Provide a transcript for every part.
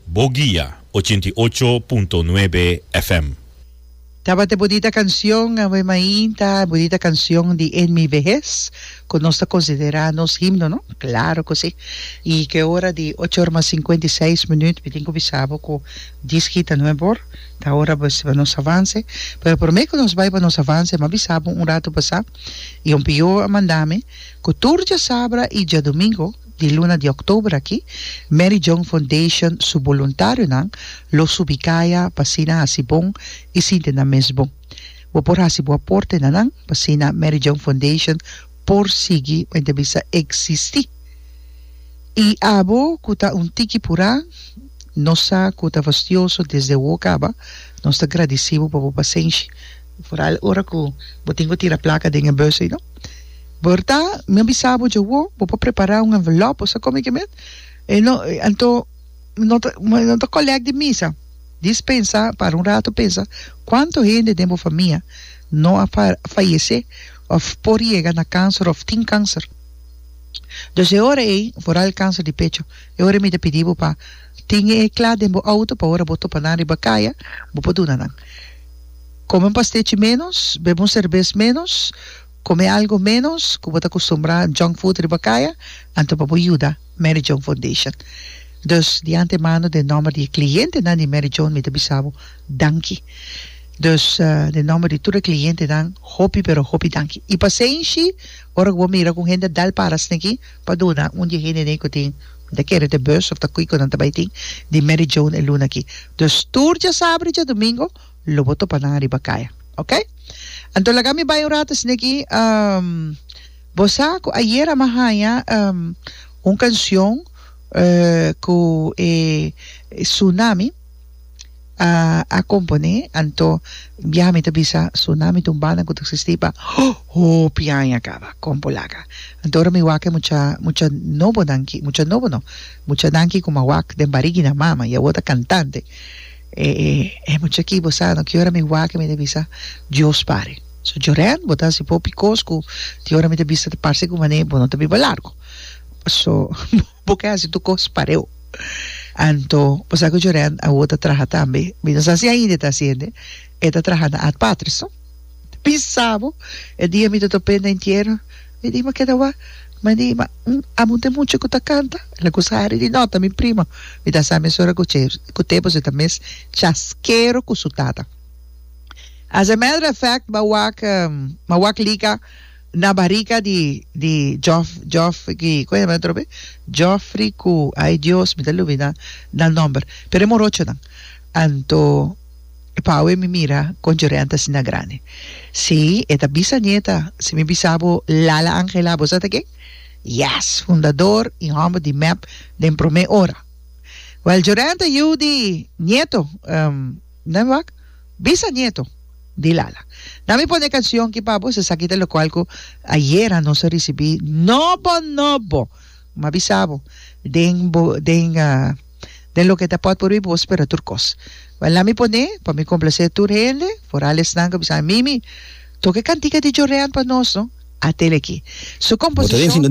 Bo guia ochenta i ocho punto nuebe FM. Tabata e bodita cancion, Ave Main ta e bodita cancion di En mi vejez cu nos ta considera nos himno, no? Claro cu si. Y cu e ora di ocho ora mas cincuenta y seis minuut mi tin cu bisa bo cu dies hita no e bor, ta ora bes pa nos avance. Pero prome cu nos bay pa nos avance m'a bisa bo un rato pasa y Ompio a manda mi cu tur djasaabra y djadomingo, Di luna di october aki, Mary John Foundation su boluntarionan lo subi caya pa asina haci bon y sinti nan mes bon. Bo por haci bo aporte na nan pa asina Mary John Foundation por sigui bo inter bisa existi. Y abo cu ta un tiki pura, nos sa cu ta fastioso desde awo caba, nos ta gradici bo pa bo pasenshi, foral ora cu bo tin cu tira placa den e bus ey no. Berta, Mi a bisa bo dje awo, bo por prepara un envelop, bo sa con mi ke men? E no, anto no ta, no ta collect di misa. Dis pensa, para un rato pensa, cuanto hende den bo famia no a fayece of por yega na cancer of tin cancer. Dus e ora ey, foral e cancer di pecho, e ora ey mi ta pidi bo pa tin e cla den bo auto pa ora bo topa nan riba caya, bo por duna nan. Come un pastelchi menos, bebe un cerbes menos. Come algo menos cu bo ta costumbrá junk food riba caya, anto pa bo yuda Mary Joan Foundation. Dus, di antemano den nomber di e clientenan di Mary Joan mi ta bisa bo danki. Dus, den nomber di tur e clientenan hopi pero hopi danki. I pa ser inci, ora cu bo mira cu un hende a dal para sneki pa duna, un di e hende dei cu tin, mi ta kere te bus of ta kico nan ta bay tin, di Mary Joan e luna aki. Dus, tur djasabre djadumingo, lo bo topa nan ariba kaya ok anto laga mi bai un rato asina aki um bo sa ku ayera mi a haña um un kancion eh ku e Tsunami ah a komponé anto bia mi ta bisa Tsunami ta un banda ku ta eksistí pa hopi aña kaba kon bo laga anto ora mi wak e mucha mucha nobonan ki mucha nobo no mucha nan ki ku mi a wak den barigina mama i awor ta kantante E e mucha ki bo sa no ki ora mi wak mi ta bisa Dios pare so Jorén bo ta hasi hopi kos ku tin ora mi ta bisa ta parse ku mane bo no ta biba largu so bo ke hasi tur kos pareo anto bo sa ku Jorén awor ta traha tambe mi no sa si ainda e ta hasi hende e ta traha na Ad Patres no. Bi sabo e dia mi ta top'é na entiero. Mi di, Ma keda wak. Mi di, Ma, amo un temucha ku ta kanta. El a kusa Harry di nota, mi primo. Mi ta sa mesora ku che, ku te pues e ta mes chaskero ku su tata. As a matter of fact, m'a wak, m'a wak lika na barika di, di Jof, Jof, di, kon yama nan atrobe? Joffrey ku, ay Dios, mi ta lubidá nan nòmber, pero e morochonan. Anto. E paue mi mira con Jorente asina grandi. Sí, e ta bisanieta. Si mi bisa bo, Lala Angela, bo sa ta ken? Yes, fundador y homber di mep den prome ora. Well, Jorente, yiu di nieto, ehm, na mi wak, bisanieto, di Lala. Na mi pone e cancion ki pa bo, esaki ta locual cu ayera nos a ricibi nobo nobo, mi a bisa bo, den bo, den, ah, den loke ta pòt por mi bo spera tur kos. Wèl lami pon'é pa mi komplase tur hende, foral esnan ku bisa mimi tok e kantika di jorrean pa nos no a tele aki. Su komposishon ta.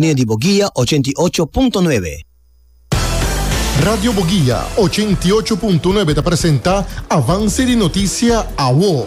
Radio Boguia ochenta i ocho punto nuebe ta presenta Avance di Noticia, awo.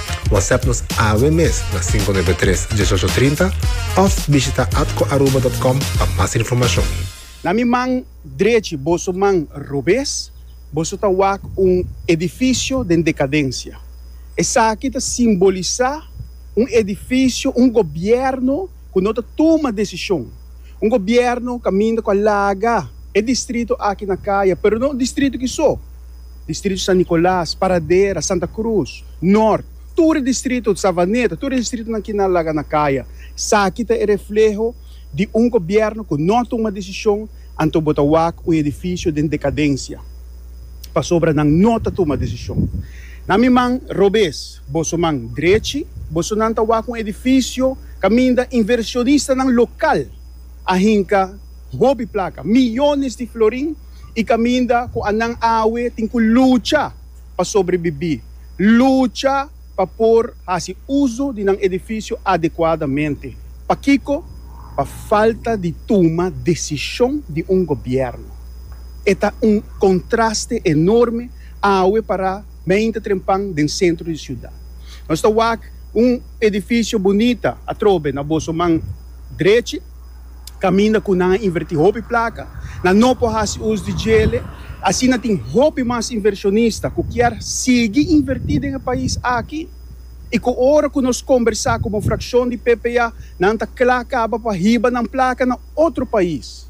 WhatsApp nos awe mes na 593 1830 of bishita atcoaruba.com pa mas informacion. Na mi man drechi boso man robes boso ta wak un edifisio den dekadensia. Esaki ta simbolisá un edifisio, un gobièrnu ku no ta tuma desishon, un gobièrnu kaminda ku a laga e distrito aki na kaya, pero no distrito ki so. Distrito San Nicolas, Paradera, Santa Cruz, Nort, tur e distrito, Savaneta, tur e distritonan ki na laga na kaya. Esaki ta e refleho di un gobièrnu ku no a tuma desishon anto bo ta wak un edifisio den dekadensia pasobra nan no ta tuma desishon. Na mi man robes, boso man drechi, bosonan ta wak un edifisio kaminda invershonistanan lokal. a hinka hopi plaka, miyones di florin i kaminda ku anan awe tin ku lucha pa sobrebibí, lucha pa por hasi uso di nan edifisio adekuadamente. Pakiko? Pa falta di tuma desishon di un gobièrnu. E ta un kontraste enorme awe pará beinta trempan den sentro di siudat. Nos ta wak un edifisio bunita atrobe na boso man. drechi, kaminda ku nan a invertí hopi plaka, nan no por hasi us di djele. Asina tin hopi mas invershonista ku kier sigui invertí den e pais aki i ku ora ku nos kombersá ku bo frakshon di PPA nan ta kla kaba pa hiba nan plaka na otro pais.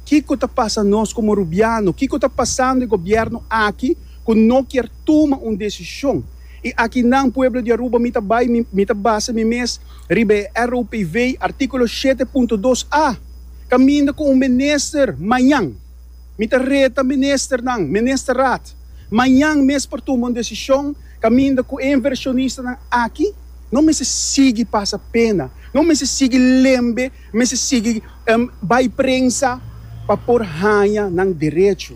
Kiko ta pasa nos komo Rubiano? Kiko ta pasando e gobièrnu aki ku no kier tuma un desishon? I aki nan, pueblo di Aruba, mi ta bai, mi ta basa mi mes. Riba e RUPV, artíkulo shete punto dos a, kaminda ku un minister mañan, mi ta reta ministernan, Ministerraad, mañan mes por tumba un desishon kaminda ku e invershonistanan aki no mester sigui pasa pena, no mester sigui lembe, mester sigui bai prensa pa por haña nan derecho.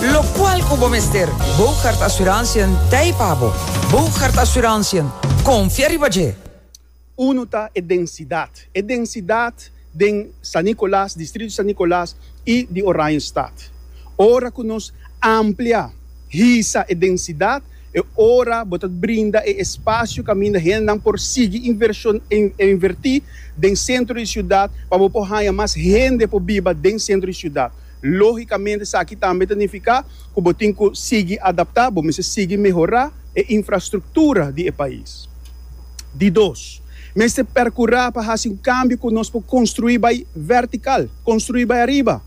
Locual cu bo mester Bougaard Assurantiën t'hei pa bo. Bougaard Assurantiën, confia riba dje! Unu ta e densidad. E densidad den San Nicolas, distrito San Nicolas y di Oranjestad. Ora cu nos amplia, hisa, e densidad, e ora bo ta brinda e espacio caminda hendenan por sigui inversion inverti den centro di ciudad pa bo por haya mas hende por biba den centro di ciudad. Lógikamente esaki tambe ta nifiká ku bo tin ku sigui adaptá, bo mester sigui mehorá e infrastruktura di e pais. Di dos, mester perkurá pa hasi un kambio ku nos por konstruí bai vertikal, konstruí bai ariba,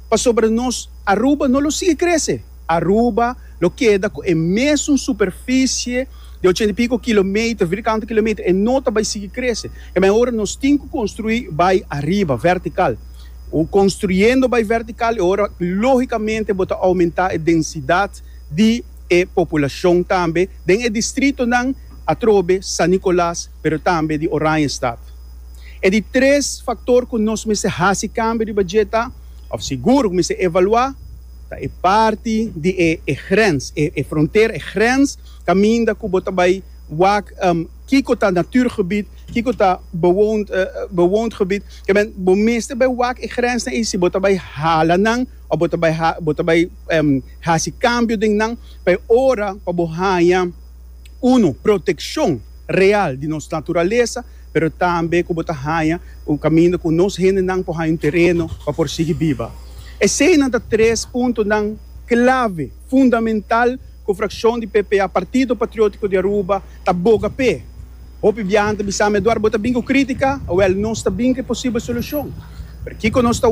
pasobra nos Aruba no lo sigui krese. Aruba lo keda ku e mesun superfisie di ochenta i piko kilometer, vierkante kilometer, e no ta bai sigui krese. Kemey ora nos tin ku konstruí bai ariba, vertikal. Bo construyendo bay vertical e ora logicamente bo ta aumenta e densidad di e populacion tambe den e distritonan atrobe San Nicolas pero tambe di Oranjestad. E di tres factor cu nos mester haci cambio riba dje ta, of sigur cu mester evalua, ta e parti di e grens, e frontera, e grens caminda cu bo ta bay wak. kiko ta natuurgebied, kiko ta bewoond bewoond gebied. Ke men bo mester bai wak e grensnan ei si bo ta bai hala nan of bo ta bai ha bo ta bai hasi cambio den nan pa e ora pa bo haña uno proteccion real di nos naturalesa pero tambe ku bo ta haña un kaminda ku nos hendenan por haña un tereno pa por sigui biba. Eseinan ta tres puntonan clave fundamental. ku frakshon di PPA, Partido Patriótiko di Aruba, ta boga p'e. Hopi biahan ta bisam'e, Eduardo, bo ta bin ku krítika? Awèl, nos ta bin ku e posibel solushon. Pero kiko nos ta.